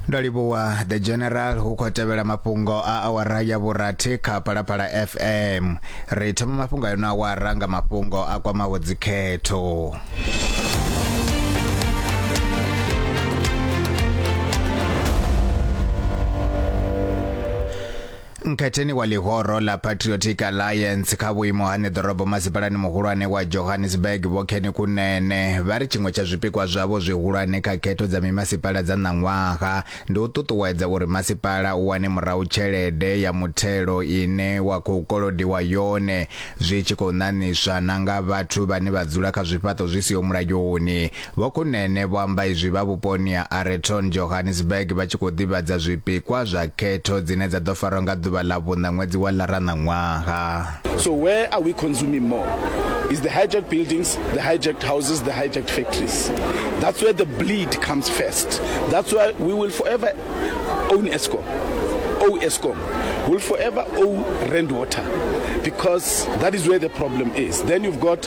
ndo livhuwa the general hu khou tevhela mafhungo a awara ya vhurathi kha phalaphala fm ri thoma mafhungo a yono awara nga mafhungo a kwamaho dzikhetho Nkhetheni wa ḽihoro ḽa Patriotic Alliance kha vhuimo ha ṋeḓorobo masipalani muhulwane wa Johannesburg Vho Kenny Kunene vha ri tshiṅwe tsha zwipikwa zwavho zwihulwane kha khetho dza mimasipala dza ṋaṅwaha ndi u ṱuṱuwedza uri masipala u wane murahu tshelede ya muthelo ine wa khou kolodiwa yone zwi tshi khou ṋaṋiswa na nga vhathu vhane vha dzula kha zwifhaṱo zwi siho mulayoni Vho Kunene vho amba izwi vha vhuponi ha Areton, Johannesburg vha tshi khou ḓivhadza zwipikwa zwa khetho dzine dza ḓo farwa nga ḓuvha ḽa vhuṋa ṅwedzi wa Lara ṋaṅwaha. So where are we consuming more? Is the hijacked buildings, the hijacked houses, the hijacked factories. That's where the bleed comes first. That's why we will forever own Eskom. Owe Eskom. We'll forever owe Rand Water because that is where the problem is. Then you've got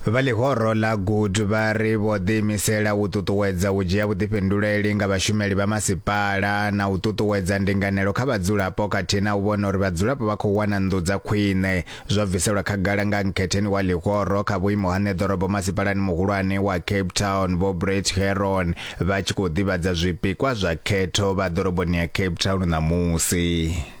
Vha ḽihoro ḽa Good vha ri vho ḓiimisela u ṱuṱuwedza u dzhia vhuḓifhinduleli nga vhashumeli vha masipala na u ṱuṱuwedza ndinganelo kha vhadzulapo khathihi na u vhona uri vhadzulapo vha khou wana nnḓu dza khwine zwo bviselwa khagala nga nkhetheni wa ḽihoro kha vhuimo ha ṋeḓorobo masipalani muhulwane wa Cape Town Vho Brett Herron vha tshi khou ḓivhadza zwipikwa zwa khetho vha ḓoroboni ya Cape Town ṋamusi.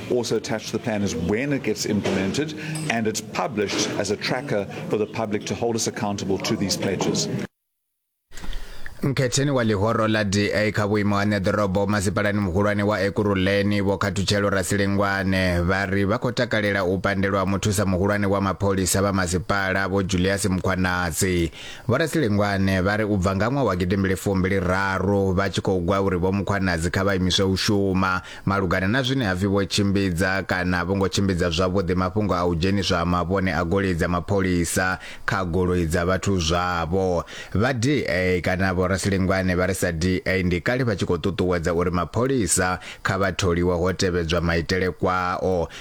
Also attached to the plan is when it gets implemented and it's published as a tracker for the public to hold us accountable to these pledges. mkhetheni wa ḽihoro ḽa da kha vhuimo ha ṋeḓorobo masipalani muhulwane wa ekuruleni vho khathutshelo rasilengwane vha ri vha khou takalela u pandelwa muthusa muhulwane wa mapholisa vha masipala vho julius mukhwanatsi vho rasilengwane vha ri u bva nga ṅwaha wa gidimbili fumbili raru vha tshi khou gwa uri vho mukhwanatsi kha vha imiswe u shuma Malugana na zwine ha pfi vho tshimbidza kana a vho ngo tshimbidza zwavhuḓi mafhungo a u dzheniswa ha mavhone a goloi dza mapholisa kha goloi dza vhathu zwavho, vha DA kana Vho Rasilingwane vha ri sa DA ndi kale vha tshi khou ṱuṱuwedza uri mapholisa kha vha tholiwe ho tevhedzwa maitele kwao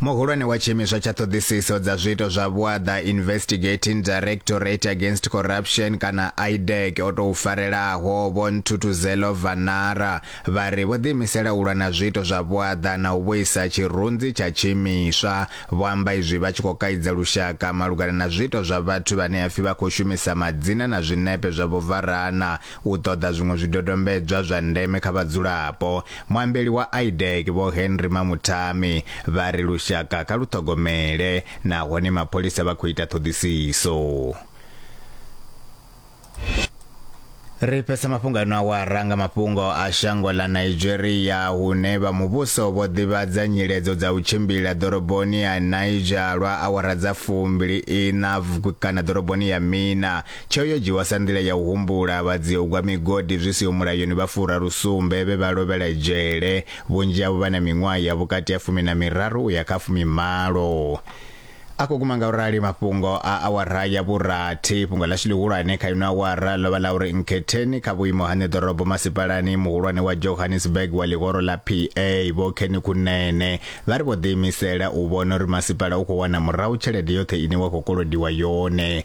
Muhulwane wa tshiimiswa tsha ṱhoḓisiso dza zwiito zwa vhuaḓa Investigating Directorate Against Corruption kana IDAC o tou farelaho Vho Ntuthuzelo Vanara vha ri vho ḓiimisela u lwa na zwiito zwa vhuaḓa na u vhuisa tshirunzi tsha tshiimiswa. Vho amba izwi vha tshi khou kaidza lushaka malugana na zwiito zwa vhathu vhane hapfi vha khou shumisa madzina na zwinepe zwa Vho Varana U ṱoḓa zwiṅwe zwidodombedzwa zwa ndeme kha vhadzulapo, muambeli wa IDEC Vho Henry Mamuthami vha ri lushaka kha lu ṱhogomele nahone mapholisa vha khou ita ṱhoḓisiso. Ri fhesa mafhungo ano awara nga mafhungo a shango ḽa Nigeria hune vha muvhuso vho ḓivhadza nyiledzo dza u tshimbila ḓoroboni ya Niger lwa awara dza fumbili ina kana ḓoroboni ya Mina Tsheo yo dzhiwa sa nḓila ya u humbula vhadziogwa migodi zwi siho mulayoni vha furarusumbe vhe vha lovhela dzhele, vhunzhi havho vha na miṅwaha ya vhukati ha fumi na miraru u ya kha fumi malo. A khou guma nga u rali mafhungo a awara ya vhurathi. Fhungo ḽashu ḽihulwane kha ino awara ḽo vha ḽa uri Nkhetheni kha vhuimo ha ṋeḓorobo masipalani muhulwane wa Johannesburg wa ḽihoro ḽa PA Vho Kenny Kunene vha ri vho ḓiimisela u vhona uri masipala u khou wana murahu tshelede yoṱhe ine wa khou kolodiwa yone